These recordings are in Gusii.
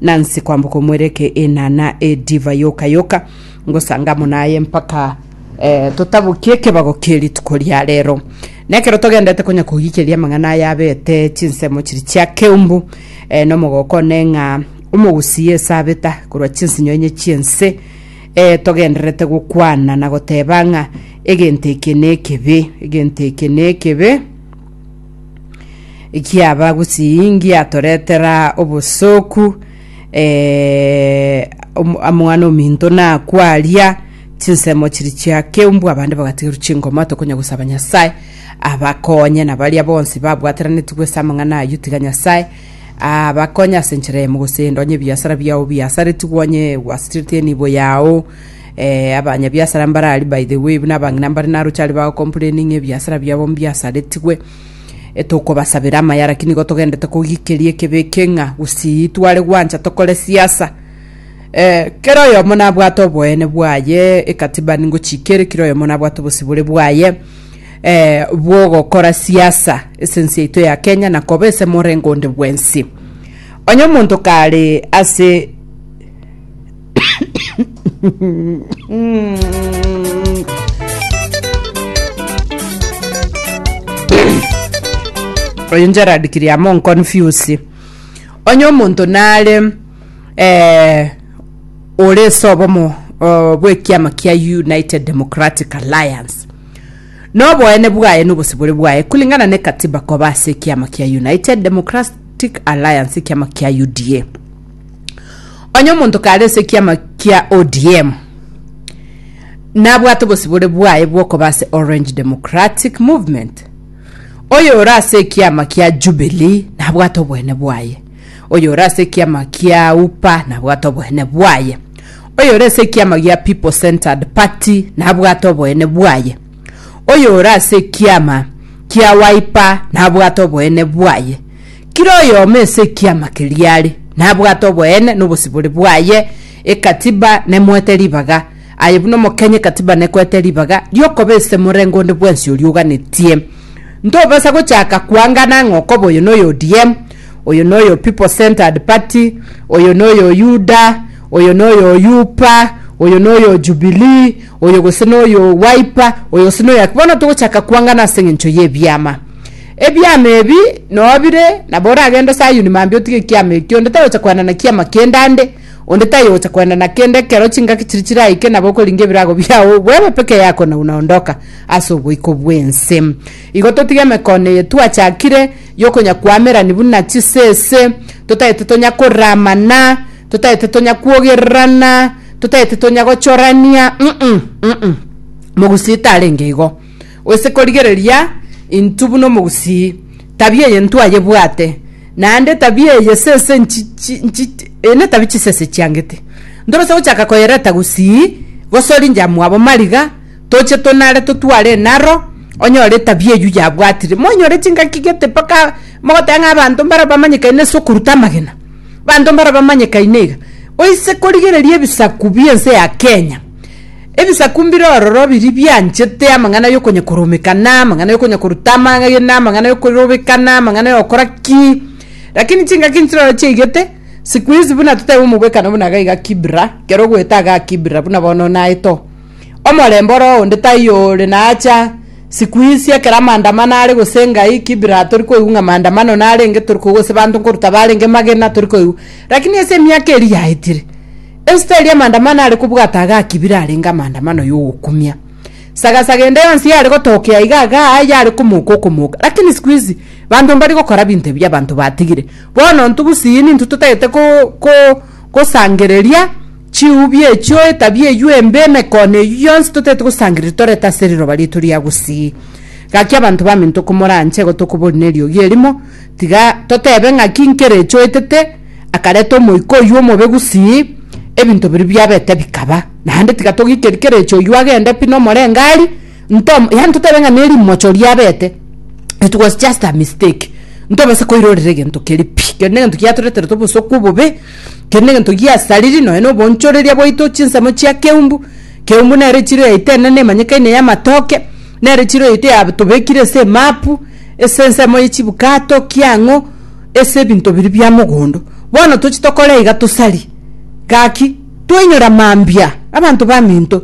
Nansi kwamboka omwereke enana edivai yoka yoka, ngosanga amo naye mpaka eh, totabokie ekebago kie rituko ria rero. Nekero togendete konya kogikeria amang'ana aya abete chinsemo chiri chia keumbu eh, nomogoko one ng'a omogusi Yesu abeta korwa chinsinyo enye chiense eh, togendererete gokwana na goteba ng'a egento eke nekebe, egento eke nekebe, Giaba gusii ngiatoretera obosooku eh, om- omwana ominto nakwaria chinsemo chiri chiakeu mbwa abande bagatigerwa chingoma tokonya gosaba nyasaye abakonye na baria bonsi babwateranetigwe ase amang'ana ayio tiga nyasaye abakonye ase enchera eyemo gose ndonye ebiasara biao biasaretigwe onye gwasireti enibo yao Ee, abanyabiasara mbare aria, by the way, buna abang'ina mbare naroche aria bagocomplaini ng'a ebiasara biabo mbiasaretigwe. E, tokobasabera amaya, lakini igo togendete kogikeria ekebe eke ng'a gusii tware gwancha tokore siasa. Eh, kera oyomo nabwate oboene bwaye, ekatiba ningochika ere, kera oyomo nabwate obosibore bwaye eh, bwogokora siasa ase ense yaito ya Kenya na koba ase morengo onde bwensi. Onye omonto kare ase oyo gerard kiriamo nconfuse onye omonto nare eh, ore ase obomo oh, bw'ekiama kia united democratic alliance noboene bwaye nobosibore bwaye kulingana ne katiba koba ase ekiama kia united democratic alliance ekiama kia uda Onye omonto kare ase ekiama kia ODM, nabwate obosibore bwaye bw'okoba ase Orange Democratic Movement. Oyo ore ase ekiama kia Jubilee nabwate obwene bwaye. Oyo ore ase ekiama kia UPA nabwate obwene bwaye. Oyo ore ase ekiama gia People Centered Party nabwate obwene bwaye. Oyo ore ase ekiama kia Wiper nabwate obwene bwaye. Kera oyomo ase ekiama keria are nabwate oboene na obosibore bwaye. Ekatiba nemoete ribaga, aye buna omokenya ekatiba nekoete ribaga riokoba ase morengo onde bwensi oria oganetie. Ntobasa gochaka koangana ng'a okoba oyo noyo ODM, oyo noyo People Centered Party, oyo noyo UDA, oyo noyo UPA, oyo noyo Jubilee, oyo gose noyo Wiper, oyo gose noyo Aki. Bono togochaka koangana ase eng'encho y'ebiama. Ebiama ebi nobire, nabo oragende Sayuni mambia otige ekiama ekio, onde tagocha koenda na kiama kende ande, onde tayogocha koenda na kende ekero chingaki chiria chiraike nabo okoringa ebirago biao bwebe peke yako na buna ondoka ase oboiko bw'ense. Igo totige emekono eye twachakire yokonya koamerani buna chisese, totaete tonya koramana, totaete tonya kwogererana, totaete tonya gochorania, mm mm, mm mm. Mogusii tarenge igo. Gose korigereria intwe buna omogusii, tabia eye ntwayebwate, naende tabia eye sese netabi chisese chiangete. Ntorase gochaka koyereta gusii, gose oringe amo abo mariga, toche tonare totware enaro, onyore etabia eyio yabwatire. Moinyore chingaki gete mpaka mogoteba ng'a abanto mbare bamanyekaine ase okoruta amagena, abanto mbare bamanyekaine iga. Gose korigereria ebisaku bi'ense ya Kenya, Ebisaku mbire ororo biria bianchete amang'ana y'okonyakoromekana, amang'ana y'okonyakoruta amagena, amang'ana y'okorobekana, amang'ana y'ogokora ki. Lakini chingaki inche naro chiaigete, siku hizi buna totebe omogwekano buna iga iga Kibra, kero ogwete agaa Kibra, buna bono naete oo. Omorembe oro onde taiyo ore nacha, siku hizi ekero amaandamano are gose ngai, Kibra tori koigwa ng'a maandamano narenge, tori koigwa gose banto nkoruta barenge magena, tori koigwa. Lakini ase emiaka eria yaetire, Esitari y'amaandamano are kobwata iga akibire arenge amaandamano y'ogokumia. Saga saga ende yonsi yare gotokea iga iga yare komoka okomoka. Lakini siku hizi banto mbari gokora binto ebi abanto batigire. Bono intwe gusii nintwe totagete ko, ko, gosangereria chiubi echio, etabia eyio embe, emekono eyio yonsi totagete gosangereria torete ase riroba riaito ria gusii. Gaki abanto baminto komoranche igo tokobori neriogi erimo, tiga totebe ng'aki nkere echoetete, akareta omoika oyio omobe gusii, ebinto biria biabete bikaba. Naende tiga togikeri kerechi oyio agende pi nomorengari, ntom yaani totebe ng'a nerimocho riabete, it was just a mistake, ntobasa koirorera egento keri pi, keri negento giatoreterete obosoku obobe, keri negento giasariri nonya na obonchoreria bwaito, chinsemo chia keumbu, keumbu nere echiro yaito enene emanyekaine ya amatoke, nere echiro yaito ya tobekire ase emapu, ase ensemo ya chibukato, kiang'o. ase ebinto biria bia mogondo, bono tochie tokore iga tosarie. Gaki, twainyore mambia, abanto baminto.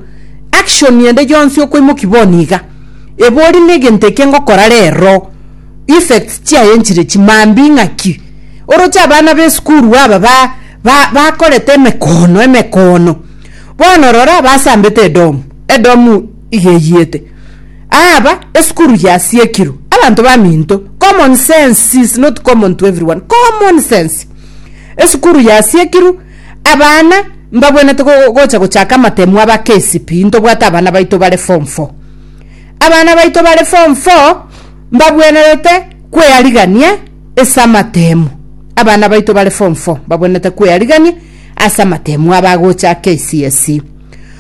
Action ende yonsi okoimokia bono iga, ebe ore negento eke ngokora rero, effects chiaye nchire chimambia ing'aki? Oroche abana b'esukuru aba ba ba bakorete emekono emekono, bono rora basambete edomu edomu, igeyiete. Aaba esukuru yasiekirwe abanto baminto. Common sense is not common to everyone. Common sense. Esukuru yasiekirwe abana mbabwenete go- gocha gochaka amatemu aba KCPE ntobwate abana baito bare form 4. Abana baito bare form 4 mbabwenerete kwearigania ase amatemu. Abana baito bare form 4 mbabwenete kwearigania ase amatemu aba gocha KCSE.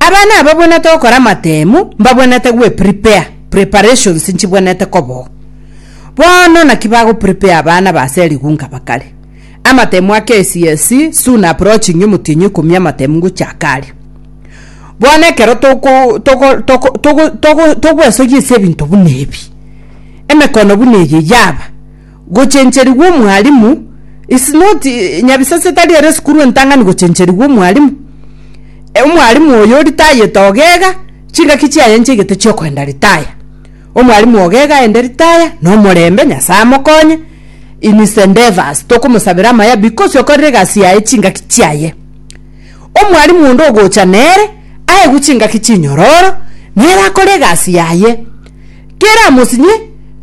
Abana ababwenete gokora amatemu mbabwenete gweprepare preparations nchibwenete koboo. Bono naki bagoprepare abana ba ase erigu nkaba kare. Amatemu a KCSE soon approaching omotienyi ikomi amatemu ngochaka aria. Bono ekero toko toko toko toko toko togwesoyia ase ebinto buna ebi, emekono buna eye yaba. Gochencherigwa omwalimu is not eh, nyabisase tari ere esukuru entang'ani gochencherigwa omwalimu. Eh, Omwalimu oyo ritayete ogega, chingaki chiaye nchiegete chiokoenda ritaya. Omwalimu ogega aende ritaya, nomorembe, Nyasaye amokonye in his endeavors, tokomosabera amaya because okorire egasi yaye chingaki chiaye. Omwalimu onde ogocha nere, aegwe chingaki chinyororo, nere akore egasi yaye. Kera amosinye,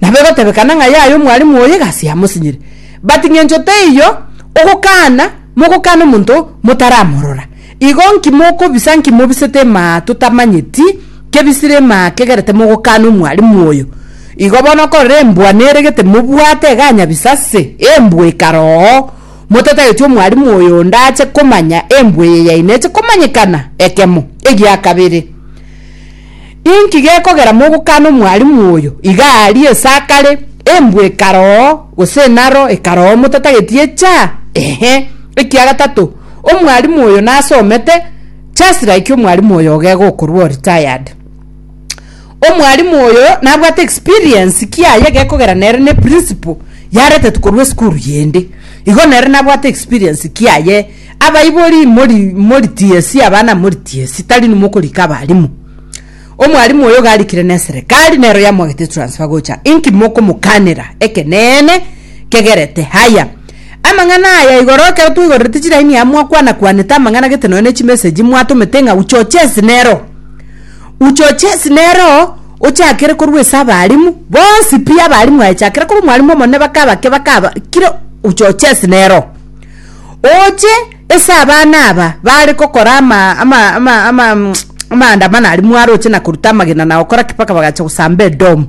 nabo egotebekana ng'a yaye omwalimu oye gasi amosinyire. But ng'encho teiyo ogokana, mogokana omonto motaramorora. Igo nki mokobisa nki mobisete emaa totamanyeti kebisire emaa kegerete mogokana omwalimu oyo? Igo bono okorora embwa neregete mobwate eganyabisa ase embwa ekaroo, motatageti omwalimu oyo onde ache komanya embwa eye yaine eche komanyekana ekemo egiakabere. Inki gekogera mogokana omwalimu oyo iga aria esakare, embwa ekaroo, gose enaro ekaroo motatageti echa? Ehe. Ekia gatato, omwalimu oyo nasomete, just like omwalimu oyo oge gokorwa o retired. Omwalimu oyo nabwate experience kiaye gekogera nere ne principle yaretetwe korwa esukuru yende. Igo nere nabwate experience kiaye. Abaibori, mori, moritiesie abana, moritiesie, tari inwe mokorika abarimu. Omwarimu oyo garikire neserekari nero yamwagete transfer gocha. Inki mokomokanera? Ekeneene kegerete. Haya. Amang'ana aya igoro ekero twaigorerete chiraini aya mwakwana kwanete amang'ana gete nonya ne chimessage mwatomete ng'a uchochesi nero. Uchochesi nero ochakere korwa ase abarimu bonsi pi abarimu aye chakera korwa omwarimu omonene baka abake baka aba kira uchochesi nero. Oche ase abana aba baare gokora ama- ama- ama- ama- mm, amaandamano aria mwaroche na koruta amagena na gokora ki mpaka bagacha gosamba Edomu.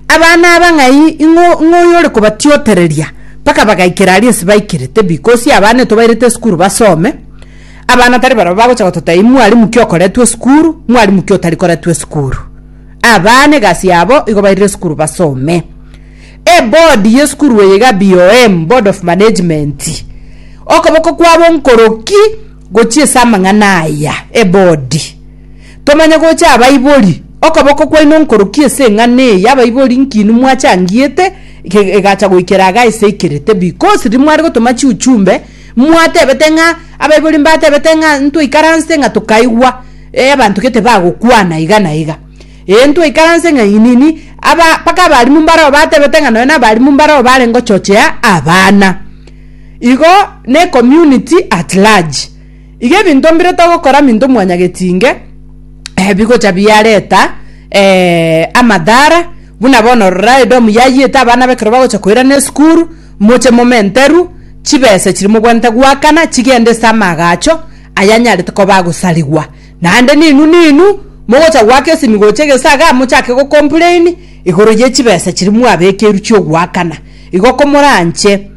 Abana aba ng'ai ing'o ing'o oyore kobatiotereria mpaka bagaikera aria ense baikerete because abana etobairete esukuru basome, abana tari barabwo bagocha gototebia mwalimu ki okoretwe esukuru, mwalimu ki otari koretwe esukuru. Abana egasi yabo igo bairire esukuru basome. Ebodi y'esukuru eye iga BOM, Board of Management. Okoboko kwabo nkoroki gochia ase amang'ana aya, ebodi. Tomanye gocha abaibori, okoboko kwaino nkoroki ase eng'ana eye, abaibori nkini mwachangiete egacha goikera iga eseikerete because riria mware gotoma chiuchumbe mwatebete ng'a abaibori mbatebete ng'a ntoikaranse ng'a tokaigwa abanto gete bagokwana iga na iga. Ee, ntwaikaranse ng'a inini, aba, mpaka abarimu mbarao batebete ng'a nonya nabarimu mbarao bare ngochochea abana. Igo ne community at large. Iga ebinto mbire togokora minto mwanyagetinge eh, bigocha biareta eh, amadhara, buna bono rora edomu yayiete abana bekero bagocha koirana esukuru, moche momenteru, chibesa chiri mobwanete goakana chigende ase amaagacho ayanyarete koba agosarigwa. Naende ninwe ninwe mogocha goaka esimigo chi'egesaga mochake go complain igoro ye chibesa chiria mwabekerwe chi'ogoakana. Igo komoranche.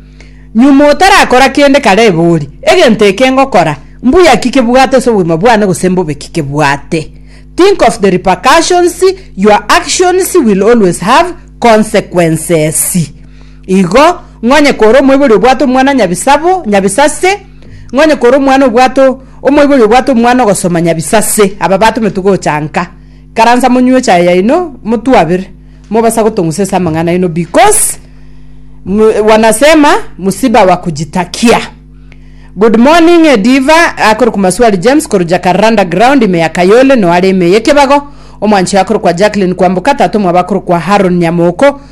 Nyuma otarakora kende kare ebe ori, egento eke ngokora, mbuya ki kebwate ase obogima bwane gose mbobe ki kebwate? Think of the repercussions, your actions will always have consequences. Igo, ng'onye kore omoibori obwate omwana nyabisabo, nyabisase, Ng'onye kore omwana obwate o- omoibori obwate omwana ogosoma nyabisase, aba batometwe gocha nka, karansa monywe echae yaino, motwabere, mobasa gotong'usa ase amang'ana aino because mu- wanasema msiba wa kujitakia. Good morning Diva akorokwa Maswali James korwa Jakarra underground ime ya Kayole noo are ime ya Ekebago, omwanchi oye akorokwa Jacqueline Kwamboka, tata omwabo akorokwa Haron Nyamoko,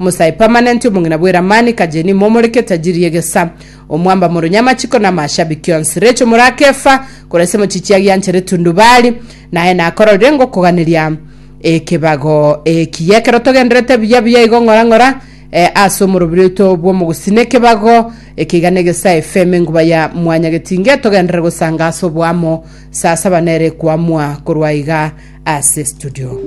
Omosae permanent omong'ina bw'eramani kajeni momoreke tajiri y'egesa omwamba moro ny'amachiko namashabiki onsi Recho morakefa koresa emochichi agianchere tundubari naye nakororire ngokoganeria ekebago eki yekero togenderete buya buya igo ng'ora ng'ora eh, ase omorobiri oito bw'omogusina ekebago ekeiga negesa efm enguba ya mwanya getinge togenderere gosanga ase oboamo saa saba nere kwamwa korwa iga ase studio